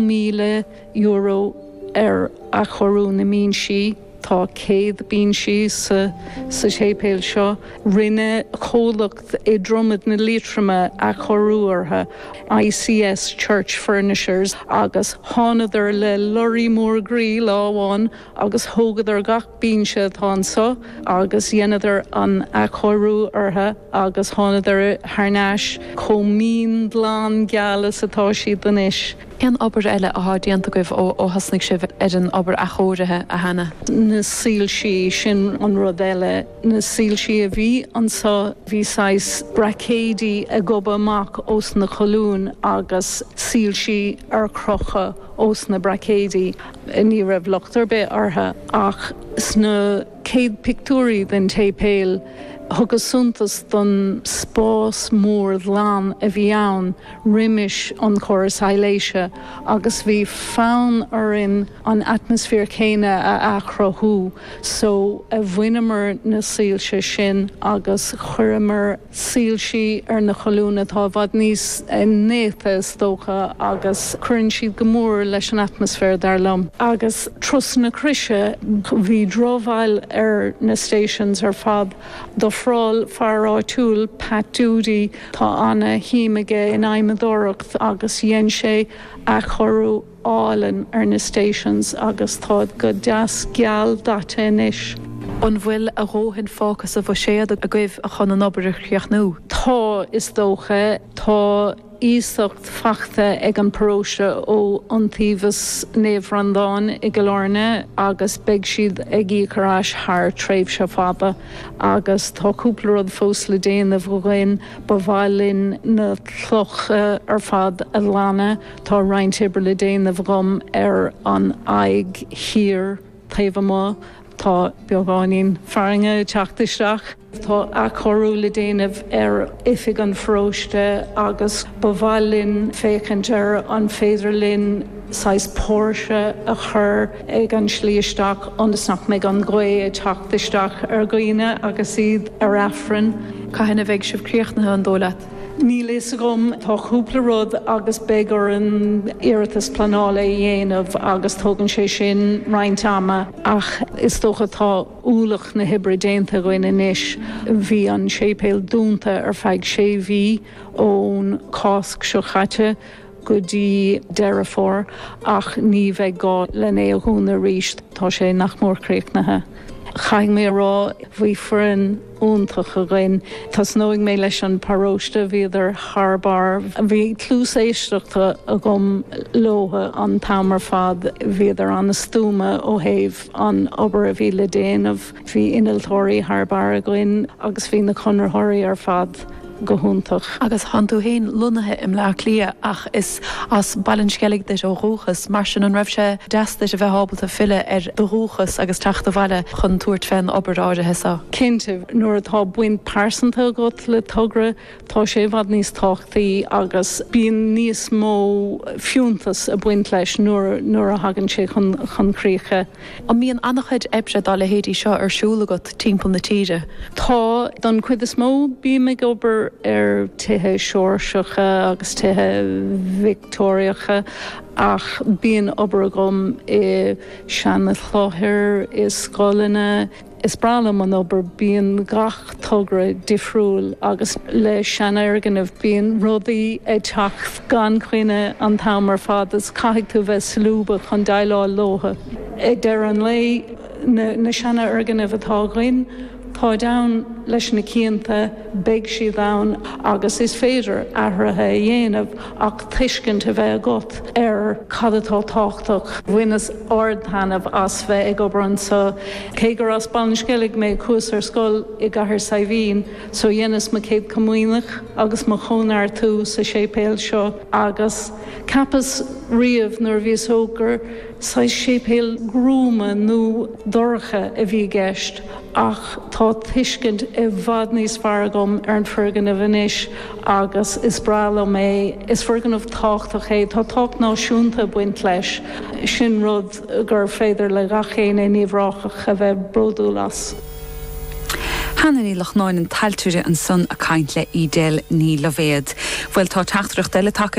€100,000 ar athchóiriú na mbinsí, tá 100 binse sa séipéal seo, rinne comhlacht i Dromad na Liatroma athchóiriú orthu, ICS Church Furnishers, agus thánadar le lorraí mór groí lá amháin agus thógadar gach binse atá anso agus dheineadar athchóiriú orthu agus thánadar thar n-ais chomh mín, glan, geal is atá siad anois. Cén obair eile athá déanta agaibh ó thosnaigh sibh ar an obair athchóirithe, a Hannah? Na soilsí, sin an rud eile. Na soilsí a bhí anso, bhí saghas braicéidí ag gobadh amach ós na colúin agus soilsí ar crochadh ós na braicéidí. Ní raibh locht ar bith orthu, ach sna céad pictiúirí den tséipéal, thugas suntas don spás mór ghlan a bhí ann roimis an chóras soilsithe, agus bhí fonn orainn an atmaisféar céanna a athchruthú, só bhaineamar na soilse sin agus chuireamar. Soilsí ar na colúin atá i bhfad níos néata is dócha agus cuireann siad go mór leis an atmaisféar dar liom. Agus Turas na Croise, bhí drochbhail ar na stations ar fad. D'ofráil fear áitiúil, Pat Doody, tá ana shuim aige in adhmadóireacht agus dhein sé athchóiriú álainn ar na stations agus táid go deas geal daite anois. An bhfuil a dhóthain fágtha sa bhuiséad agaibh chun an obair a chríochnú? Tá, is dócha. Tá iasacht faighte ag an bparóiste ó Iontaobhas Naomh Breandán i gCill Áirne agus beidh siad á íoc thar n-ais thar tréimhse fada. Agus tá cúpla rud fós le déanamh againn. Ba mhaith linn na clocha ar fad a ghlanadh. Tá roinnt oibre le déanamh agam ar an aghaidh thiar taobh amuigh, tá beagáinín fearthainne ag teacht isteach. Tá athchóiriú le déanamh ar oifig an pharóiste agus ba mhaith linn féachaint ar an féidir linn saghas póirse a chur ag an tslí isteach ionas nach mbeidh an ghaoth ag teacht isteach ar dhaoine agus iad ar aifreann. Cathain a bheidh sibh críochnaithe, an dóigh leat? Níl a fhios agam, tá cúpla rud agus beidh orainn iarratas pleanála a dhéanamh agus tógann sé sin roinnt ama ach is dócha tá bulc na hoibre déanta againn anois. Bhí an séipéal dúnta ar feadh sé mhí, ón Cásc seo chaite go dtí Deireadh Fómhair, ach ní bheidh gá lena a dhúnadh arís, tá sé nach mór críochnaithe. Caithfidh mé a rá, bhí foireann. iontach againn. Tosnóidh mé leis an paróiste, bhíodar thar barr, bhí cluas éisteachta agam leotha an t-am ar fad, bhíodar an-stuama ó thaobh an obair a bhí le déanamh, bhí innealtóirí thar barr againn agus bhí na conraitheoirí ar fad. go hiontach. Agus tánn tú fhéin lonnaithe i mBleá Cliath ach is as Baile an Sceilg duit ó dhúchas, mar sin an raibh sé deas duit a bheith ábalta filleadh ar do dhúchas agus teacht abhaile chun tabhairt fén obair áirithe so? Cinnte, nuair atá baint pearsanta agat le togra tá sé i bhfad níos tábhachtaí agus bíonn níos mó fiúntas ag baint leis nuair a thagann sé chun críche. An mbíonn an-chuid oibre dá leithéidí seo ar siúl agat timpeall na tíre? Tá, don chuid is mó. Bím ag obair ar tithe Seoirseacha agus tithe Victeoiriacha ach bíonn obair agam i seanchláithreacha, i scoileanna, Is breá liom an obair, bíonn gach togra difriúil agus le seanfhoirgneamh bíonn rudaí ag teacht gan choinne an t-am ar fad agus caithfidh tú a bheith solúbtha chun déileáil leotha. I ndeireadh an lae, na seanfhoirgnimh atá againn, táid ann leis na cianta, beidh siad ann agus is féidir athruithe a dhéanamh. ach tuiscint a bheith agat ar cad atá tábhachtach. Bhaineas ard-taitneamh as bheith ag obair anseo. Cé gur as Baile an Sceilg mé, chuas ar scoil i gCathair Saidhbhín, so dheineas mo Chéad Comaoineach agus mo Chóineartú sa séipéal seo, agus cheapas riamh nuair a bhíos óg gur saghas séipéal gruama nó dorcha a bhí i gceist, ach tá tuiscint i bhfad níos fearr agam ar an foirgneamh anois. agus is breá liom é. Is foirgneamh tábhachtach é, tá tábhacht náisiúnta ag baint leis, sin rud gur féidir le gach éinne in Uíbh Ráthach a bheith bródúil as. Annie Ní Lochnáin, an t-ailtire ansan ag caint le Edel Ní Loibhéad. Bhuel tá teachtaireacht eile tagtha.